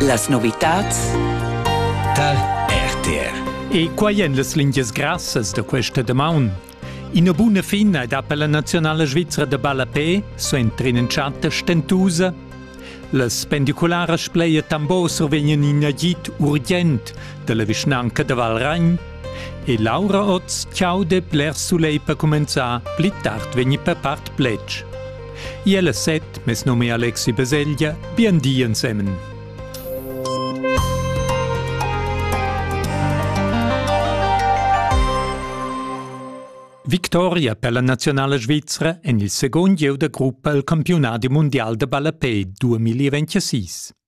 Las novitads tar RTR. E quai èn las lingias grassas da questa damaun. Ina buna fina ed per la nazionala svizra da ballapé, so entrin in chatta stentusa. Las pendicularas pleia tambor survegnan in agit urgent dalla vischnanca da Valragn e Laura Oz ciaude bler sulei per comenzar pli tard vegni per part plec. Iel e set, mes nome è Alexi Beseglia, bien di ensemen. Victoria per la nazionale svizzera en il secondo gieu da gruppa al campionati mondial da ballapei 2026.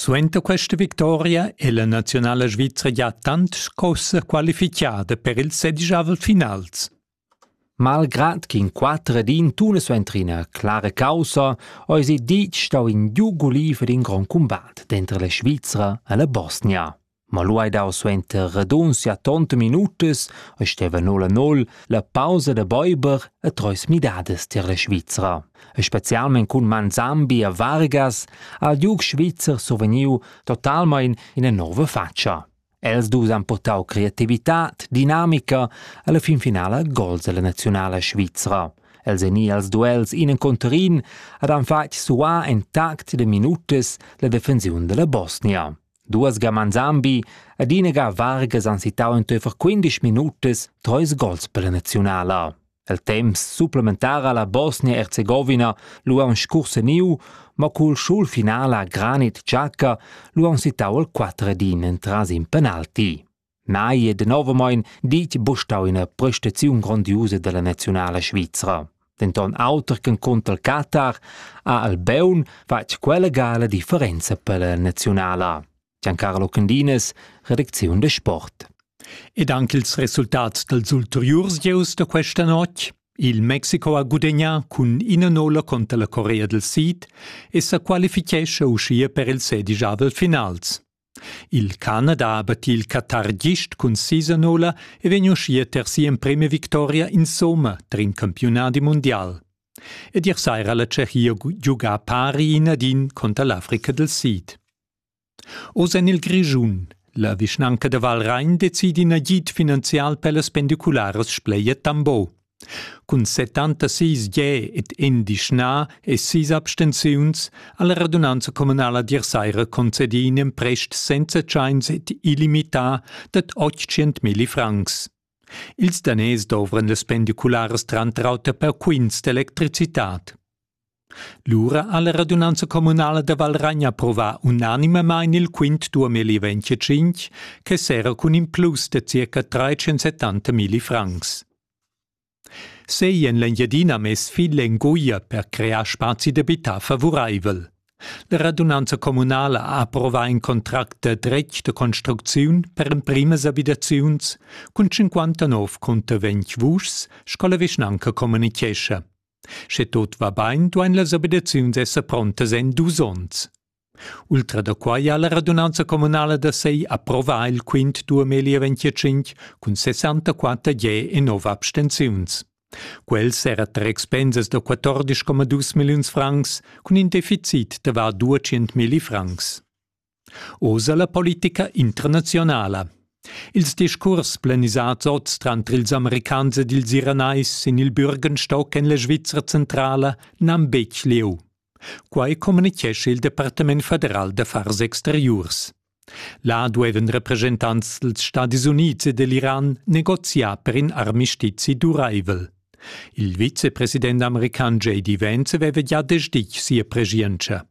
Suenter questa victoria è la naziunala svizra gia tant scossa qualifichada per ils sediavel finals. Malgrad ch'in quatter ed in tun suenter ina clara caussa eisi ditg stau in giug guliv ed in grond cumbat denter la Svizra e la Bosnia. Ma lu hai dau suenter radunzia tont minutas e steva nol a nol la pausa da beiber e treis midadas tier la Svizra. E specialmein cun manzambi e vargas ha il giug svizzer survegniu totalmein ina nova faccia. Els dus han portau creativitad, dinamica e la finfinala gols dalla nazionala svizra. Els ein i als duels in encontr in ed han fatg suar en tact de minutas la defensiun della Bosnia. Duas ga Manzambi ed ina ga Vargas han sittau enteifer quindisch minutas treis gols per la naziunala. El temps supplementar alla Bosnia-Herzegovina lu han scurseniu, ma cul schulfinala Granit Xhaka lu han sittau il quatter ed in entras in penalti. Mai e denovamein ditg bustau ina prestaziun grondiusa dalla naziunala svizra. Denton auter ch'encunter Qatar ha Albeun fatg quella gala differenza per la naziunala. Giancarlo Candinas, redacziun de sport. Ed anche ils resultati dels ulteriurs gieus da questa notte Il Mexico ha gudagnà cun ina nolla contro la Corea del Sid e sa qualifichescha uschia per il sedigiavel finals. Il Canada ha battì il qatargist cun sisanola e vegn uschia ter si'emprima victoria insomma tar in campiunadi mundial. Ed ier saira la Tschechia giugà pari in ad in conter l'Africa del Sid. Oz en il Grischun. La vischnanca da Valrain decidi in agid finanzial per las pendicularas Spleia Tambo. Cun settantasis gè ed endischnà e sis abstenziuns ha la radunanza communala d'ier saira concedì in emprest senza tschains ed illimità dad 800 milli francs. Ils daners dovran las pendicularas tranter auter per quints d'electricitad. Lura ha la radunanza communala da Valragn approvà unanimamain il quint 2025 che serra cun in plus da circa 370 milli francs. Sei en l'Engiadina mess fil en guia per crear spazi d'abitar favuraivel. La radunanza communala ha approvà in contract da dretg da construcziun per emprimas abitaziuns cun 59 cunter 20 vuschs, sco la vischnanca communichescha. Sche tot va bain, duain las obligaziuns esser prontas en dus onns. Ultra da quai ha la radunanza communala da sei approvà il quint 2025 cun 64 je e 9 abstenziuns. Quels era tar expensas da 14,2 milliuns francs cun in deficit da var 200 milli francs. Oz a la politica internazionala. Ils discurs planisads oz tranter ils Americans ed ils Iranais sin il Bürgenstock en la Svizra centrala n'han betg lieu. Quai communitgescha il Departament federal d'affars exteriurs. Là duevan representants dals Stadis Unids e dell'Iran negoziar per in armistizi duraivel. Il vicepresident american JD Vance aveva gia desditg sia preschientscha.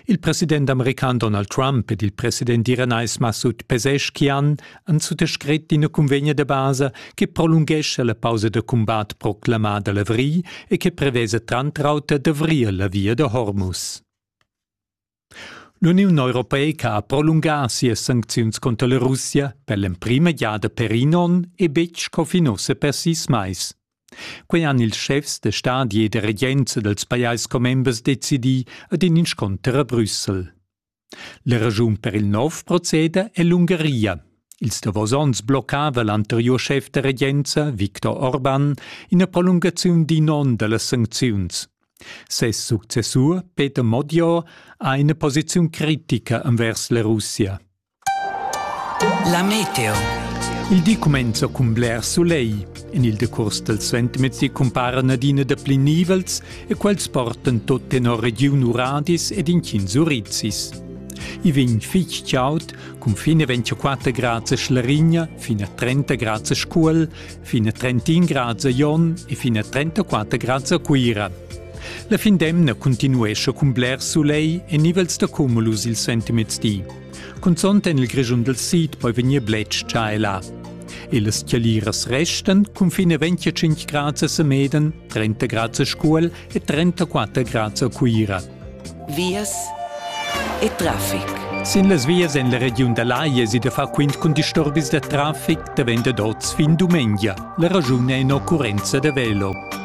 Il president american Donald Trump ed il president iranais Massoud Pezeshkian han suttascrit ina cunvegna da basa che prolunghescha la pausa da cumbat proclamada l'avrigl e che prevesa tranter auter d'avrir la via da Hormuz. L'Uniun europeica ha prolungà sias sancziuns conter la Russia per l'emprima giada per in onn e betg sco fin ussa per sis mais. Quei han ils schefs de stadi e de regents dels pajais commembers decidì ad in inscunter a Brüssel. La ragiun per il nov proceder è l'Ungaria. Ils davos onns bloccava l'anteriur schef de regenza, Viktor Orban, ina prolungaziun d'in onn dallas sancziuns. Ses successur, Peter Modior, ha ina posiziun critica envers la Russia. La meteo. Il di cumenza cun bler sulegl. En il decurs dal suentermezdi cumparan adina dapli nivels e quels portan tut tenor regiun uradis ed intgins urizis. I vegn fitg chaud, cun fin a 24 grads a Schlarigna, fin a 30 grads a Scuol, fin a 31 grads a Jon e fin a 34 grads a Cuira. La fin d'emna continuescha cun bler sulegl e nivels da cumulus il suentermezdi. Cunzont en il Grischun del Sid poi vegnir bletsch tschaila. Illes Chialiras resten cunfine 25 grad a Semeden, 30 grad a Scuol e 34 grad a Cuira. Vias e traffic. Sin las vias en la regiun da Laie si da far quint cun disturbis da traffic da venda d'oz fin dumengia. La ragiun è in occurrenza da velo.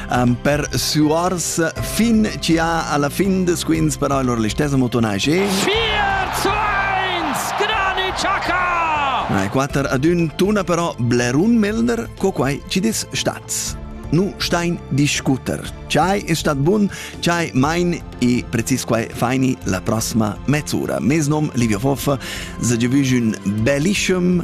um, per suarsa fin ci ha alla fin des quins però allora l'istessa motonai che 4 zu 1 Granit Xhaka Nei 4 ad un tuna però Blerun Melner co quai ci dis stats nu stein discuter. Ciai è stat bun, ciai mein e precis quai faini la prossima mezz'ora. Mes nom Livio Foffa, se giovüs un bellischem